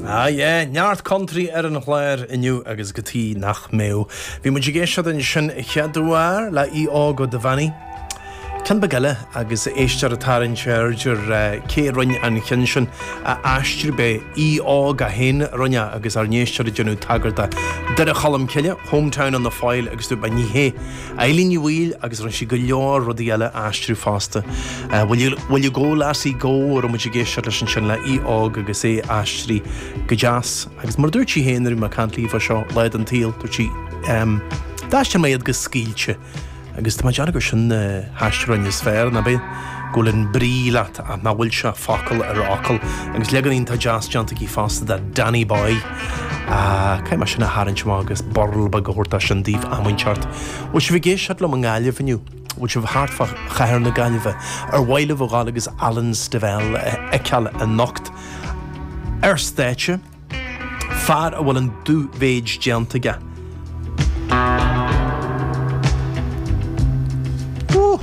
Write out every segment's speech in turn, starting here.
Ah yeah, neart country ar an chlár inniu agus cad tuige nach mbeadh. Bhí muid ag éisteacht ansin a chéaduair le Aodh Óg Ó Duibheannaigh. Ceann beag eile agus éisteoir ag tarraingt aird air cé a rinn an ceann sin a aistriú arbh é Aodh Óg é féin a rinn é agus ár n-éisteoir ag déanamh tagairt do Dhoire Cholm Cille, Hometown on the Foyle agus dúirt mé ní hé. Eileen Ní Bhaoill agus rinne sí go leor rudaí eile a aistriú fosta. Bhuel eh Go Lassie Go a raibh muid ag éisteacht leis ansin le Aodh Óg agus é aistrithe go deas. Agus mar a dúirt sí féin, nuair a bhí mé ag caint léi fá seo, lá den tsaol, dúirt sí, D'aistrigh mé iad go scaoilte. Agus tá mé ag déanamh gur sin na haistriúcháin is fearr, nach b'é? Go bhfuil an brí leat ach nach bhfuil sé focal ar fhocal. Agus leagan iontach deas déanta aici fosta de Danny Boy. Caithfidh mé sin a tharraingt amach agus burl beag a thabhairt as sin daoibh am inteacht. Bhfuil sibh ag éisteacht liom i nGaillimh inniu? Bhfuil sibh thart fá chathair na Gaillimhe? Ar mhaith libh a dhul agus Alan Stivell a fheiceáil anocht? Ar stáitse? Fear a bhfuil an dú-mhéid déanta aige. Ó!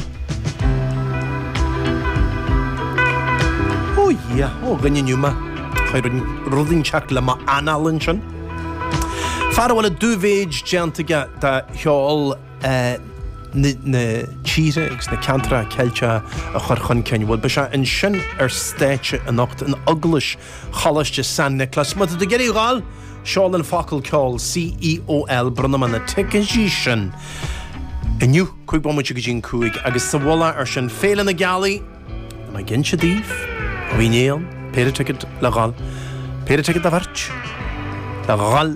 Ó dhia! Ó dhuine inniu ma chuaigh rud inteacht le mo anáil ansin. Fear a bhfuil an dú-mhéid déanta aige de cheol na tíre agus na ceantracha Ceilteacha a chur chun cinn. Bhuel, beidh sé ansin ar stáitse anocht in Eaglais Choláisteach San Nioclás. Má tá tú ag iarraidh a dhul, seol an focal ceoil CEOL Bronnfaidh mé na ticéidí sin inniu cúig bomaite go dtí an cúig agus sa mhullach air sin, Féile na Gealaí, mé ag inse daoibh, Dhún Éan, péire ticéad le dhul, péire ticéad do bheirt le dhul.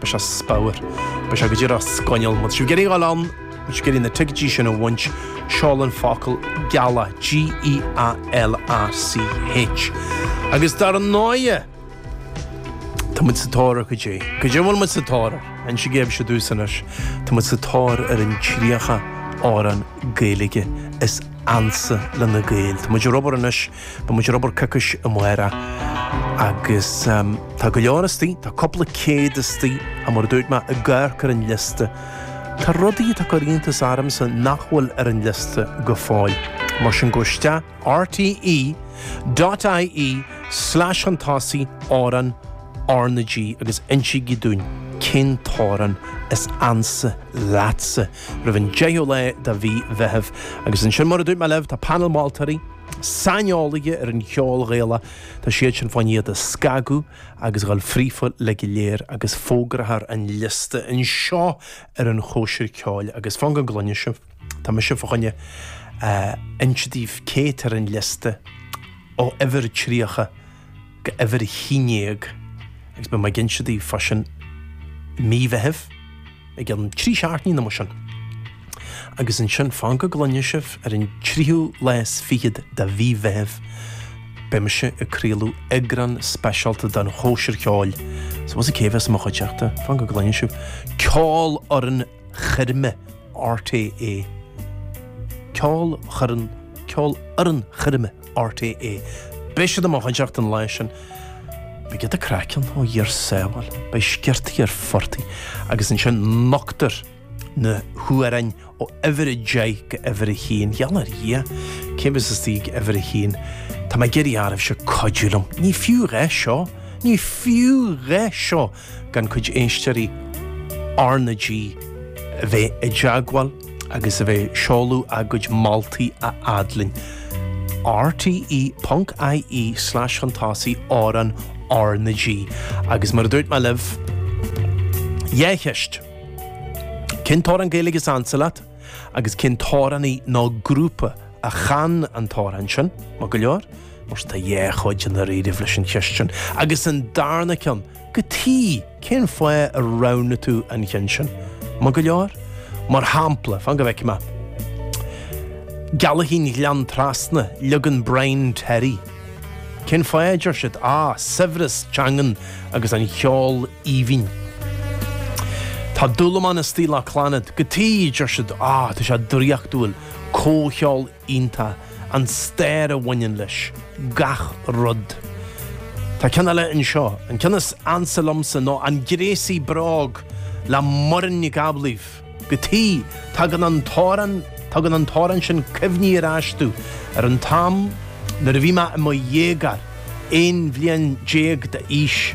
Beidh sé super. Beidh sé go díreach sgoinneal. Má tá sibh ag iarraidh a dhul ann, má tá sibh ag iarraidh na ticéidí sin a bhaint, seol an focal gealach, G-E-A-L-A-C-H. Agus dar ndóighe, tá muid sa tóir ar, goidé, goidé a bhfuil muid sa tóir ar? Inseoidh mise daoibh anois, tá muid sa tóir ar an 30 amhrán Gaeilge is ansa le na Gaeil. Tá muid ar obair anois Beidh muid ar obair coicís amárach agus tá go leor istigh, tá cúpla céad istigh mar a dúirt mé ag amharc ar an liosta. Tá rudaí atá ag cur iontas ormsa nach bhfuil ar an liosta go fóill. Mar sin gabh isteach rte.ie slash an tosaigh amhrán RnaG agus insígí dúinn cén t-amhrán is ansa leatsa roimh an deichiú lá de mhí Mheithimh. Agus ansin mar a dúirt mé libh tá painéal moltóirí, saineolaithe ar an cheol Ghaelach, tá siad sin fá choinne iad a scagadh agus a dhul fríofa uilig go léir agus fógrófar an liosta anseo ar an Chóisir Ceoil agus fan go gcluine sibh, tá mise fá choinne a inse daoibh cé atá ar an liosta ó uimhir 30. go uimhir a haon déag agus beidh mé ag inse daoibh fá sin i mí Mheithimh i gcionn trí seachtainí nó mar sin. Agus ansin fan go gcluinfidh sibh ar an tríú lá is fichead de mhí Mheithimh beidh mise ag craoladh eagrán speisialta den chóisir cheoil is an bhfuil a fhios agaibh cé a bheas i mo chuideachta fan go gcluinfidh sibh Ceolfhoireann Choirme RTÉ. Ceol choirn Ceolfhoireann Choirme. RTÉ. Beidh siad i mo chuideachta an lá sin. Beidh iad ag craic ann ó Dhia ár sábháil, beidh sciortaí ar phortaigh agus ansin nochtfar na hamhráin ó uimhir a deich go uimhir a haon. Gheall ar Dhia, cé a bheas istigh ag uimhir a haon? Tá mé ag iarraidh oraibhse cuidiú liom. Ní fiú a dhath seo. Ní fiú a dhath seo gan cuid éisteoirí R na G a bheith i dteagmháil agus a bheith ag seoladh a gcuid moltaí a fhad linn. rte ponc ie slash chun tosaigh amhrán R na G. Agus mar a dúirt mé libh, dhá cheist. Cén t-amhrán Gaeilge is ansa leat agus cén t-amhránaí nó grúpa a chan an t-amhrán sin? Maith go leor. Mar tá dhá chuid i ndáiríribh leis an cheist sin, agus an darna ceann cad chuige, cén fáth ar roghnaigh tú an cheann sin? Maith go leor? Mar shampla, fan go bhfeicfidh mé. Gealachín Ghleann Trasna, leagan Brian Terry. Cén fáth a deir siad, á, saibhreas teangan agus an cheol aoibhinn. Tá Dúlamán istigh le Clannad cad chuige, deir siad, á, tá sé draíochtúil, comhcheol iontach, an stair a bhaineann leis, gach rud. Tá ceann eile anseo, an ceann is ansa liomsa, ná An Gréasaí Bróg le Muireann Nic Amhlaoibh. Cad chuige, tagann an t-amhrán, tugann an t-amhrán sin cuimhní ar ais domh, ar an t-am nuair a bhí mé i mo dhéagóir, 11 bhliain d'aois.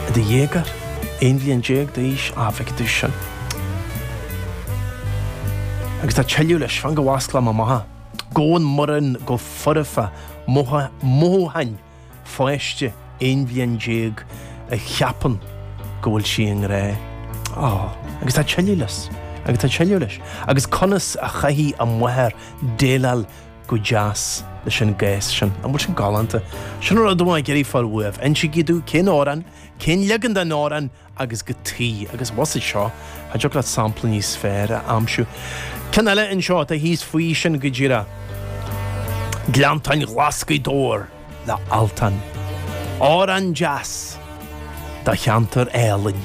I do dhéagóir? 11 bhliain d'aois? An bhfaca tú sin. Agus tá tuilleadh leis, fan go bhfosclaim amach é. Gabhann Muireann go foirfe, mothúcháin pháiste 11 bhliain a cheapann go bhfuil sí i ngrá. Á, agus tá, Agus tá tuilleadh leis. Agus conas a chaithfidh a máthair déileáil Go deas leis an gcás sin. An bhfuil sin galánta? Sin an rud atá mé ag iarraidh a fháil uaibh. Insigí domh cén amhrán, cén leagan den amhrán agus cad chuige. Agus amuigh sa seo, cha dtiocfadh leat sampla níos fearr a aimsiú. Ceann eile anseo atá thíos faoi sin go díreach. Gleanntáin Ghlas' Ghaoth Dobhair le Altan. Amhrán deas do cheantar álainn,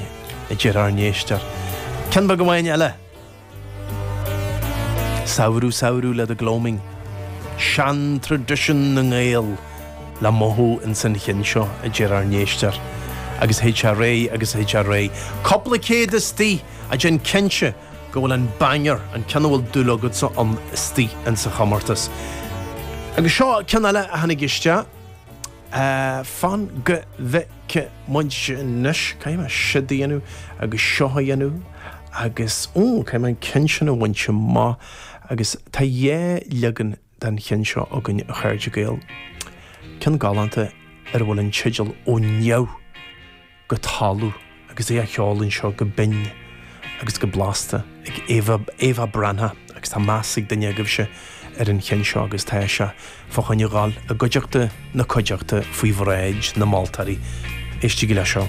a deir ár n-éisteoir. Ceann beag amháin eile. Samhradh Samhradh le The Gloaming, seantraidisiún na nGael le mothú ins an chinn seo, a deir ár n-éisteoir, agus et cetera agus et cetera. Cúpla céad istigh, ach déan cinnte go bhfuil an banger, an ceann a bhfuil dúil agatsa ann, istigh ins an chomórtas. Agus seo ceann eile a tháinig isteach, fan go bhfeicfidh. ce muid anois? Caithfidh mé siúd a dhéanamh agus seo a dhéanamh agus ó, caithfidh mé an ceann sin a bhaint amach agus tá dhá leagan den cheann seo againn a chairde Gael. Ceann galánta ar a bhfuil an teideal Ó Neamh go Talamh agus é á cheol anseo go binn agus go blasta. ag Éabha Breathnach agus tá meas ag duine agaibhse ar an cheann seo agus tá sé fá choinne dhul i gcuideachta na cuideachta faoi bhráid na moltóirí. Éistigí le seo.